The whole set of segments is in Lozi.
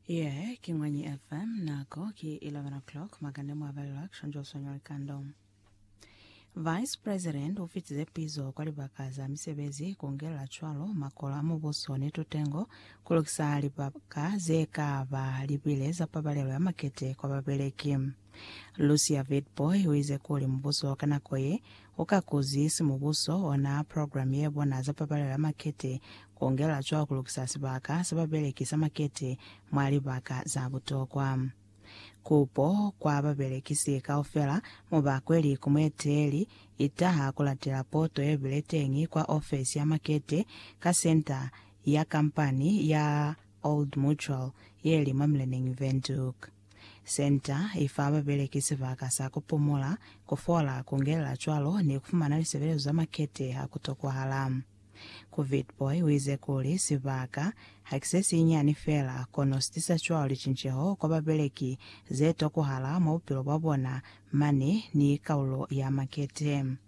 Yeah, ki Mwanyi FM, nako ki 11 o'clock, makande mwa balelwa kushonjo sonyo likando. Vice President u fitize pizo kwa libaka za misebezi ku ngelela cwalo makolo a mubuso ni tutengo ku lukisa libaka ze ka ba libile za pabalelo ya makete kwa babeleki. Lucia Witbooi u ize kuli mubuso ka nako ye Ku ka kuzi si mubuso ona program ye bona za pabalelo ya makete ku ngela cwa ku lukisa sibaka sa babeleki sa makete mwa libaka za butokwa. Kupo kwa babelekisi kaufela mu ba kweli ku mueteeli i taha ku latela poto ye bile teñi kwa ofesi ya makete ka senta ya kampani ya Old Mutual ye li mwa Mileneñi Windhoek. Senta i fa babeleki sibaka sa ku pumula, ku fola, ku ngelela cwalo ni ku fumana lisebelezo za makete ha ku tokwahala. Ku Vitbooi uize kuli, Sibaka ha ki se sinyinyani fela, kono si tisa cwalo licinceho kwa babeleki ze tokwahala mwa bupilo bwa bona mane ni kaulo ya makete.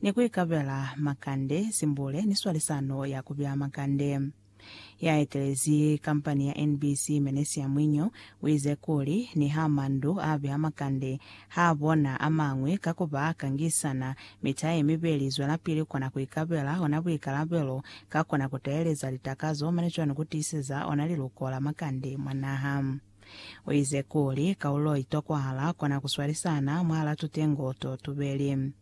ni ku ikabela makande, simbule, ni swalisano ya ku bea makande. Ya etelezi kampani ya NBC, Menesia Mwinyo, u ize kuli, Niha mandu a bea makande, ha a bona a mañwi ka ku ba kangisana, mi ta ye mibeli zwelapili kona ku ikabela ona buikalabelo, ka kona ku teeleza litakazo mane cwalo ni ku tiiseza ona liluko la makande mwa naha. U ize kuli, Kaulo i tokwahala kona ku swalisana mwahala tutengo to tubeli.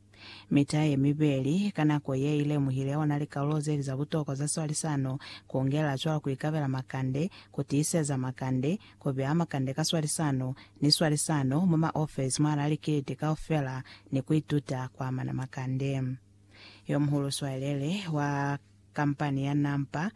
Mita ye mibeli ka nako ye i lemuhile ona likalulo ze li za butokwa za swalisano, ku ongelela cwalo ku ikabela makande, ku tiiseza makande, ku beya makande ka swalisano, ni swalisano mwa maofesi mwahal'a likiliti kaufela, ni ku ituta ku amana makande. Yomuhulu swalele wa. Kampani ya Nampa,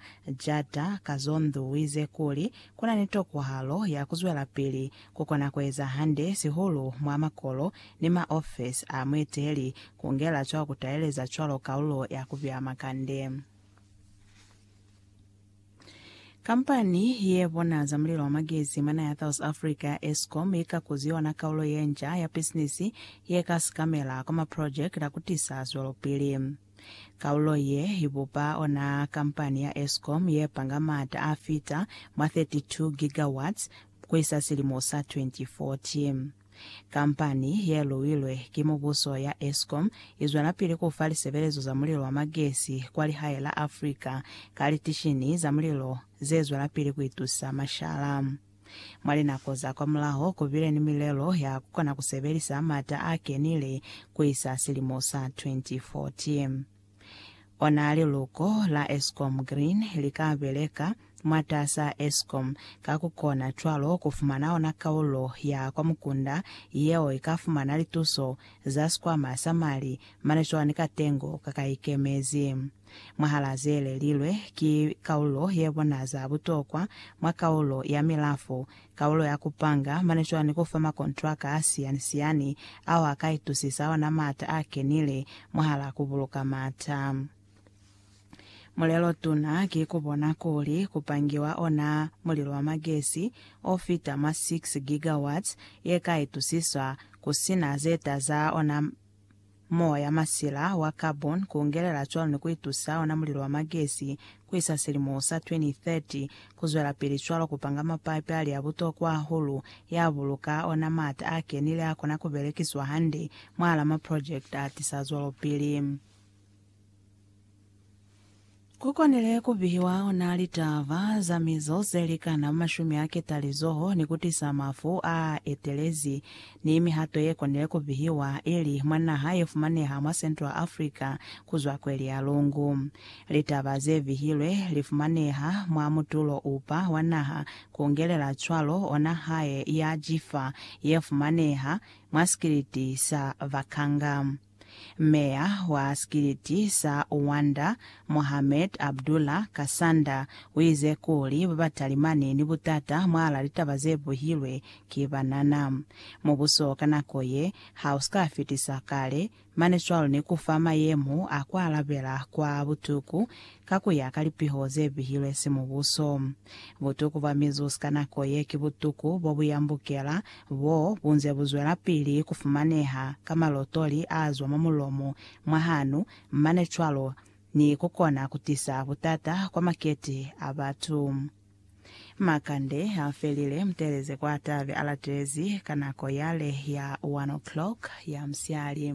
Jata, Kazondo wize kuli kuna ni tokwahalo ya kuzwelapili kukona kueza hande sihulu mwa makolo ni ma ofesi a mueteli kungela cwa kutaeleza cwalo kalulo ya kupiha makande. Kampani ye bona za mulilo wa magezi mwa naha ya South Africa ya Eskom ikakuzi yona kalulo yenca ya bisinisi yeka sikamela kwa maprojekiti a kutisa zwelopili. Kaulo ye i bupa ona kampani ya Eskom ye panga maata a fita mwa 32 gigawatts ku isa silimo sa 2040. Kampani ye luilwe ki mubuso ya Eskom i zwelapili ku fa lisebelezo za mulilo wa magesi kwa lihae la Africa ka litishini za mulilo ze zwelapili ku itusa mashala. Mwa linako za kwamulaho, ku bile ni milelo ya ku kona ku sebelisa m'ata a kenile ku isa silimo sa 2040. Ona liluko la Eskom Green li ka beleka mwatas'a Eskom ka ku kona cwalo ku fumana ona kaulo ya kwa mukunda yeo i ka fumana lituso za Sikwama sa Mali, Management ka Tengo ka ka Ikemezi. Mwahalaa ze lelilwe, ki kaulo ye bona za butokwa mwa kaulo ya milafo, kaulo ya ku panga, mane cwani ku fa makontraka a siyani-siyani ao a ka itusisa ona maata a kenile mwahalaa ku buluka maata. Mulelo tuna ki ku bona kuli ku pangiwa ona mulilo wa magesi o fita mwa 6 gigawatts ye ka itusiswa ku si na ze taza ona Mowa ya masila wa carbon ku ungelela cwalo ni ku itusa ona mulilo wa magesi ku isa silimo sa 2030. Ku zwelapili cwalo ku panga mapapi a li a butokwa hahulu, ya buluka ona maata a kenile a kona ku belekiswa hande mwahal'a maprojekte a tisa zwelopili. Ku konile ku bihiwa ona litaba za mizo ze likana mwa mashumi a ketalizoho ni ku tisa mafu a etelezi, ni mihato ye konile ku bihiwa ili mwa naha ye fumaneha mwa Central Africa ku zwa kweli ya lungu. Litaba ze bihilwe li fumaneha mwa mutulo upa wa naha, ku ngelela cwalo ona hae ya Jifa ye fumaneha mwa sikiliti sa Vakanga. Meya wa sikiliti sa Uwanda, Mohamed Abdullah Kasanda, uize kuli babatalimani ni butata mwala litaba zebuhilwe ki banana. Mubuso ka nako ye hauska fitisa kale, mane cwalo ni kufa mayemo a kualabela kwa butuku Ka ku ya ka lipiho ze bihilwe simubuso, butuku bwa mizus ka nako ye ki butuku bo bu yambukela bo bu nze bu zwelapili ku fumaneha ka malotoli a zwa mwa mulomo mwa hanu mane cwalo ni ku kona ku tisa butata kwa makete a batu. Makande a felile, mutelezi kwa tabe a latelezi ka nako yale ya one o'clock ya musiali.